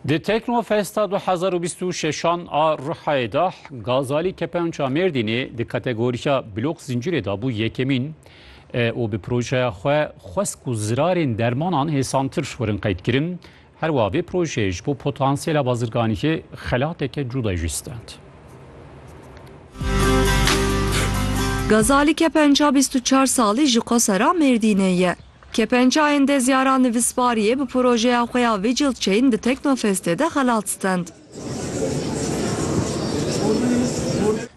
Di Teknofesta du hezar û bîst û şeşan a Rihayê de Gazalî Kepenca Mêrdînê di kategoriya Blok Zincîrê de bû yekemîn û bi projeya xwe Xwesk û zirarên dermanan hêsantir werin qeydkirin. Herwiha vê projeyê ji bo potansiyela bazirganiyê xelateke cuda jî stend. Gazalî Kepenca bîst û çar salî ji Qosera Mêrdînê ye. Kepencayên Dezyara Nivîsbariyê bi projeya xwe ya Vigil Chain di Teknofestê de xelat stend.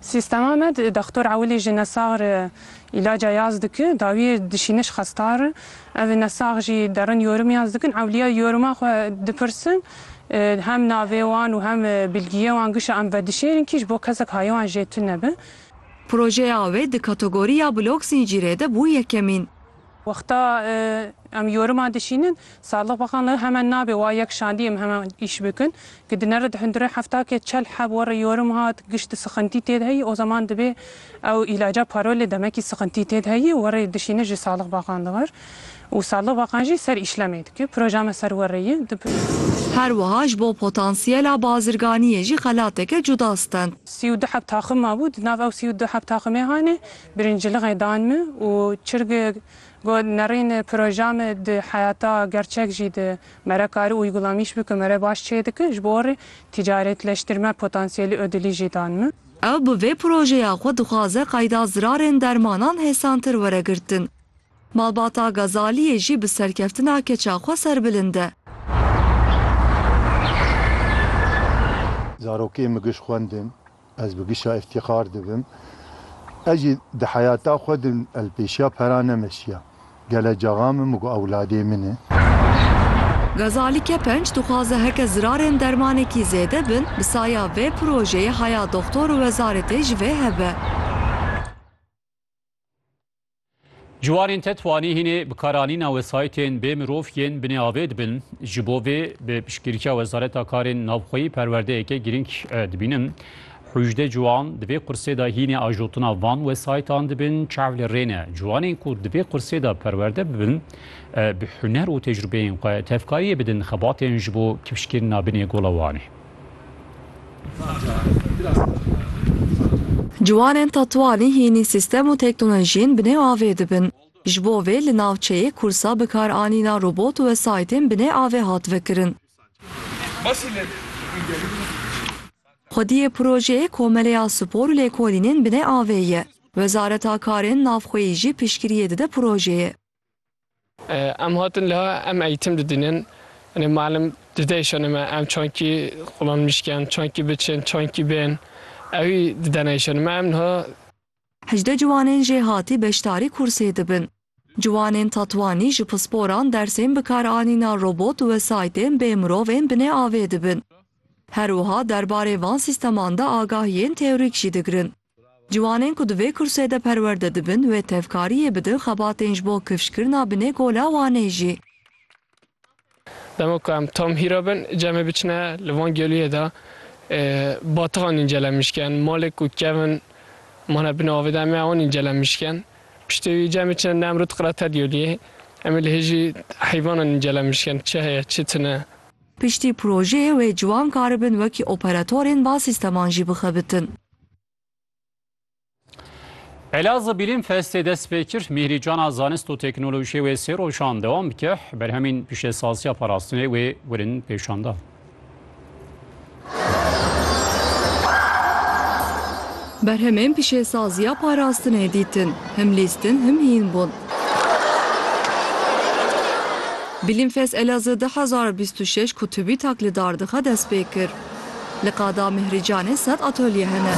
Sîstema me di Dextor Ewilî ji nesax re îlaca yaz dike, dawiyê dişîne ji xestan re. Ev nesax jî derin yorim yaz dikin, ewliya yoriman xwe dipirsin, hem navê wan û hem bilgiyê wan gişa em vedişêrin kî ji bo kesek hayê wan jê tune be. Projeya wê di kategoriya blog zîncîrê de bû yekemîn. Wexta em yoriman dişînin, Sadlıq Bakan li hemen nabê wa yek şandî em hemen îş bikin. Ki di nere di hundure hefta ke çel heb were yorim hat, gişt sixintî têd heyî, o zaman dibê ew îlaca parolê demekî sixintî têd heyî, were dişîne ji Sadlıq Bakan li wir. Û Sadlıq Bakan jî ser îşlemê dike. Proja me ser were ye. Her wiha ji bo potansiyela bazirganiyê jî xelateke cuda stend. Sî û du heb taxim mabû. Di nav ew sî û du heb taximê hanê Birincilixê dan min û çirg got nerîn proja me di heyata gerçek jî di me re kari uygulamîş bike me re baş çê dike ji bo rê tîcaretleştirme potansiyelî ödilî jî dan min. Ew bi vê projeya xwe dixwaze qayda zirarên dermanan hêsantir were girtin. Malbata Gazaliyê jî bi serkeftina keça xwe serbilind e. Zarokê min giş xwendin, ez bi gişa îftîxar dibim. Ez jî di heyata xwe de li pêşiya pera nemeşiya. Gele caxa min min got ewladê min e. Gazali Kepenc dixwaze heke zirarên dermanekî zêde bin, bi saya vê projeyê haya doxtor û wezaretê ji vê hev e. Ciwanên te twanîhînê bi karanîna wesayîtên bê mirov yên binê avê dibin. Ji bo vê bi piştgiriya Wezareta Karên Navxweyî perwerdeyeke girîng dibînim. Hûjde ciwan di vê qursê de hînê ajotina van wesayîtan dibin. Çav li rê ne. Ciwanên ku di vê qursê de perwerde bibin bi huner û tecrûbeyên xwe tevkariyê bidin xebatên ji bo kifşkirina binê gola Wanê. Ciwanên Tetuanî hînî sîstem û teknolojiyên bi nê avê dibin. Ji bo vê li navçeyê kursa bikaranîna robot û wesayîtên bi nê avê hat vekirin. Xwediyê projeyê Komeleya Spor û Lêkolînên bi nê avê ye. Wezareta Karên Navxweyî jî piştgiriyê dide projeyê. Em hatin liha em eğitim didinin. Hani malim dideyşane me em çankî xulan mişken, çankî biçin, çankî bên. Ewî dideneyşane me em niha. Hejdeh ciwanên jê hatî beşdarî kursê dibin. Ciwanên Tatwanî ji pisporan dersên bikaranîna robot we saytên bê mirovên binê avê dibin. Her wiha derbarê van sîsteman de agahiyên teorîk jî digirin. Ciwanên ku di vê kursê de perwerde dibin wê tevkariyê bidin xebatên ji bo kifşkirina binê Gola Wanê jî. Dema ku em tam hîra bin, cemê biçine li van gelûyê de batixa nîncele mişken, malê ku kevin mane binê avê de em ê ewan nîncele mişken. Piştî wî cemê çine Nemrûd qirete gelûyê. Em ê li hê jî heyvanan nîncele mişken, çi heye, çi tune. Piştî projeyê wê ciwan karibin wekî operatorên va sîsteman jî bixebitin. Elazığ Bilim Festê dest pê kir, Mîhrîcana Zanist û Teknolojiyê wê sê rojan dewam bike, berhemîn pîşesaziya parastinê wê werin pêşan da. Berhemên pîşesaziya parastinê dîtin, him lîstin him hîn bûn. Bilimfest Elazığ 2026 kutubî taklidar dixe dest pê kir. Li qada Mihricanê sed atolye hene.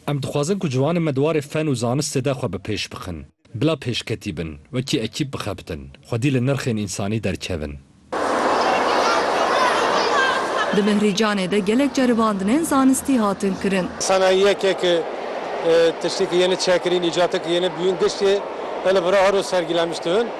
Em dixwazin ku ciwanên me di warê fen û zanistê de xwe bi pêş bixin, bila pêşketî bin, wekî ekîp bixebitin, xwedî li nirxên însanî derkevin. Di Mihricanê de gelek ceribandinên zanistî hatin kirin. Sanayî yekek e tiştê ku yê ne çekirîn, îcateke yê ne bûyîn giştê e li vir a her roj sergîlemiştin.